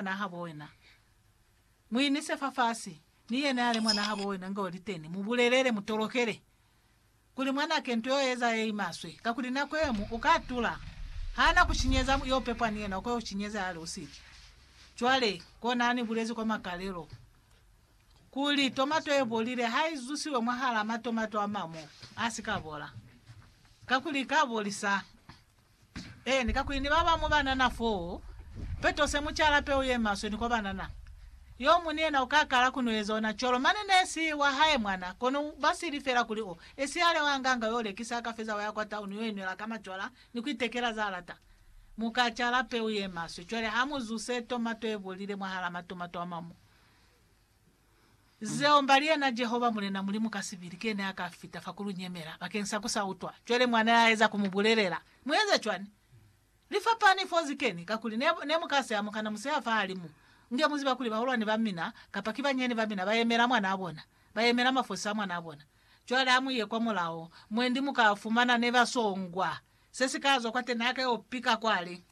mwanahabo wena. Muinise fafasi, mi yena yale mwanahabo wena nga oli teni, mubulelele, mutolokele, kuli mwanake nto yo eza ye imaswe, kakuli nako yemu uka tula. Hana kushinyeza, yo pepwa ni yena, uka yo shinyeza yale usiki. Cwale, kona hani bulezi kwa makalelo, kuli, tomato ye bolile ha i zusiwe mwahala matomato amamo, a si ka bola, kakuli ika bolisa. Eeni, kakuli ni ba ba mu banana foo, peto se mu cala peu ye maswe ni kwa banana. Yo mu ni yena u ka kala ku no eza ona cwalo, mane ne si wa hae mwana, kono ba sili fela kuli o esihale wa nganga yo lekisa a ka feza wa ya kwa tauni yo inwela ka macwala ni ku itekela za lata. Mu ka cala peu ye maswe. Cwale ha mu zuse tomato e bolile mwahal'a matomato a mamu. Zeo mba li yena Jehova Mulena Mulimu ka sibili kene a ka fita fa ku lu nyemela bakeng sa ku sa utwa. Cwale mwa ne a eza ku mu bulelela, Mu eza cwani? Li fapani fo zi keni, kakuli ne, ne mu ka se amuka na museha fahalimu. Nge mu ziba kuli bahulwani ba mina, kapa ki banyenyani ba mina, ba yemela mwanaa bona, ba yemela mafosi a mwanaa bona. Cwale ha mu ye kwa mulao, mwendi mu ka fumana ne ba songwa. Se si ka zwa kwateni, ha ka yo pika kwale.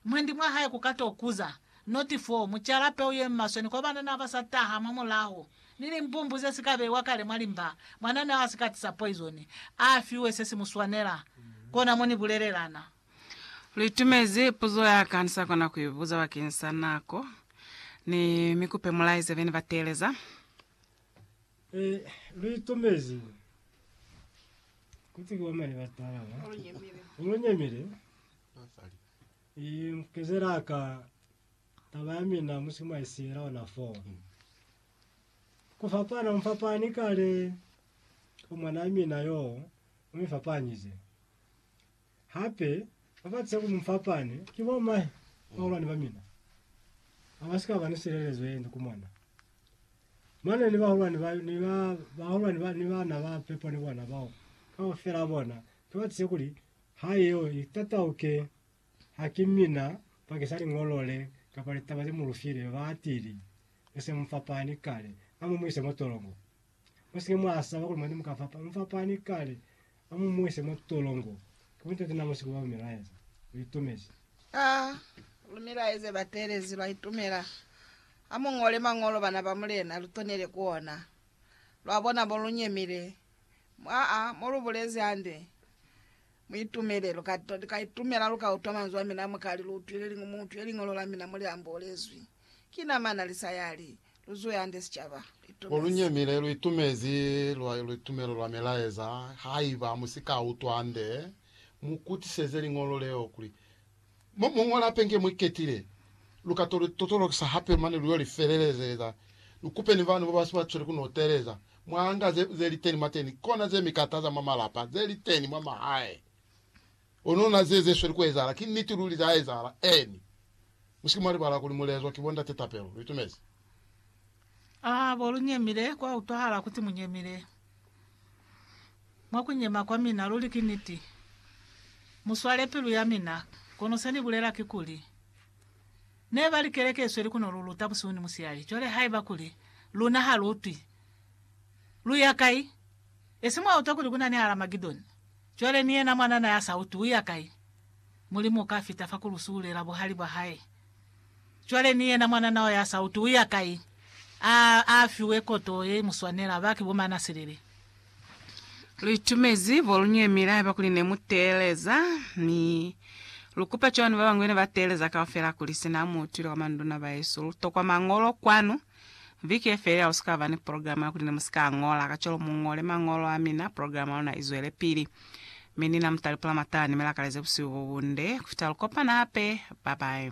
Mwendi mwa hae ku ka to kuza. Noti 4, Mu cala peu ye maswe ni kwa banana ba sa taha mwa mulaho, ni limbumbu ze si ka beiwa kale mwa limba. Mwanana a si ka tisa poizoni, a fiwe se si mu swanela. Kona mo ni bulelela na. Lu itumezi puzo ya ka ni sa kona ku i buza bakeng sa nako. Ni mi kupe mu laize bene ba teeleza. E, lu itumezi. Ku ti ki wa mane ba tala ba. Lu nyemile. I mukezela ka taba ya mina musi mwa isiela ona fo. Ku fapana mu fapani kale ku mwanaa mina yo u mi fapanyize. Hape, ba ba tse ku mu fapane ki bo mahe ba hulwani ba mina, ba ba si ka ba ni silelezo ye nde ku mwana. Mane ni bahulwani ba, ni ba, bahulwani ba, ni bana ba pepo ni bona bao, kaufela bona ki ba tse kuli Ha yeo i tatauke, ha ki mina bakisa liñolo le kapa litaba ze mu lu file, ba atile. Ni se mu fapani kale. A mu mu ise mwa tolongo. Mu si ke mwa saba kuli mwani mu ka fapana. Mu fapani kale. A mu mu ise mwa tolongo. Ki buntate na mu si ku ba bu mi laeza. Lu itumezi. A lu mi laeze bateelezi. Lwa itumela. Ha mu ñole mañolo, bana ba Mulena, lu tonele ku ona. Lwa bona mo lu nyemile. Aa, mo lu bulezi hande. Mu itumele, lu ka, lu ka itumela, lu ka utwa manzwi a mina, mu ka li, Lu utwile li, mu utwile Liñolo la mina mo li ambolezwi. Ki nama na li sa yali. Lu zuhe hande, sicaba. Lu itumezi. Mo lu nyemile, lu itumezi lwa, luitumelo lwa milaeza. Haiba mu si ka utwa hande, mu kutiseze Liñolo leo, kuli, Mo mu ñola pengi ye mu iketile, lu ka totolokisa hape mane lu yo li felelezeza. Lu kupe ni bana ba ba si ba cweli ku no teeleza. Mwa nga ze, ze li teni mwateni, kona ze mi kataza mwa malapa, ze li teni mwa mahae. Kono na ze, ze sweli ku ezahala, ki niti luli za ezahala. Eeni. Mu si ke mwa libala kuli mu lezwa ki bo ndate tapelo. Lu itumezi. A bo lu nyemile, kwa utwahala kuti mu nyemile. Mwa ku nyema kwa mina, luli ki niti. Mu swale pilu ya mina. Kono se ni bulela kikuli, Ne ba li keleke isweli ku no lu luta busihu ni musihali. Cwale haiba kuli luna ha lu utwi, lu ya kai? Esi mwa utwa kuli ku na ni Haramagedoni? Cwale ni yena mwanana ya sa utwi u ya kai? Mulimu u ka fita fa ku lu suhulela buhali bwa hae. Cwale ni yena mwanana o ya sa uti u ya kai, a, a fiwe koto ye i mu swanela. Ba ki bo mana silili. Lu itumezi bo lu nyemile haiba kuli ne mu teeleza, mi lu kupa cwani ba bañwi ne ba teeleza kaufela kuli sina mu utwile kwa manduna bahesu lu tokwa Mañolo kwanu? Viki ye felela u si ka ba ni programa ya kuli ne mu si ka ñola, kacwalo mu ñole mañolo a mina, programa ya luna i zwelepili. Mi ni na mu talipula matala ni mi lakaleze busihu bo bunde ku fita lu kopana hape. Babae.